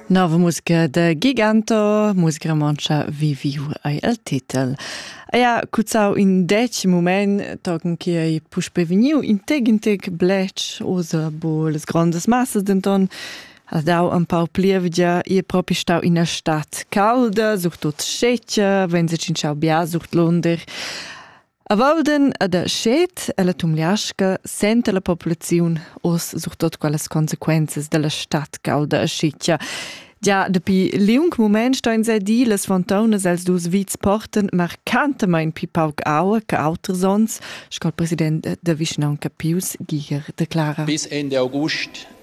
Nova musica da Giganto, musica romontscha viviu ei el titel. Eia cuzzau in dec moment tochen che ei puspe vegniu in tec in tec blech osa bo les grondas massas denton ha dau un pau plievgia e propi stau ina stadt calda, surtut scetga, wenn se cinciau bia sucht Lunder. A Walden ed a Schet e la Tumliasca senta la populaziun oz surtut quellas consequenzas dalla stad calda e schitgia. Già dapi liung mument ston sa dir las fontaunas els dus vits portan marcantamain pli pauc aua che auters onns, sco il president da vischnaunca Pius Giger declara. Bis Ende August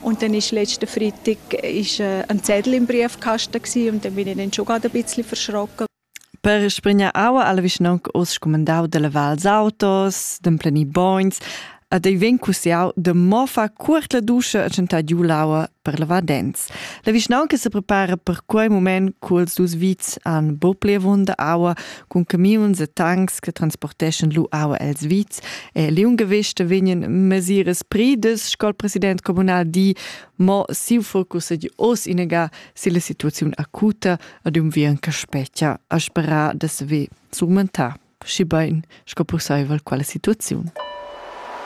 Und dann ist letzten Freitag ist, äh, ein Zettel im Briefkasten gewesen und dann bin ich dann schon gerade ein bisschen verschrocken. Per sprinja aua alla vicinonc os scumandau delle val autos, d'emplenir boins, ad ei vegn cussiau de mo fa cuort la duscha a centar giu l'aua per lavar dents. La vicinonca se prepara per quei moment culs dus vits an bo plevonda aua cun camiuns e tanks che transporteschan lu aua els vits e liungewichte vegnan mesiras pridas sco il president communal di mo siu focus ed oz inega si la situaziun acuta ad un vien che spetgia a sperar da se surmentar schi bein sco pusseivel quella situaziun.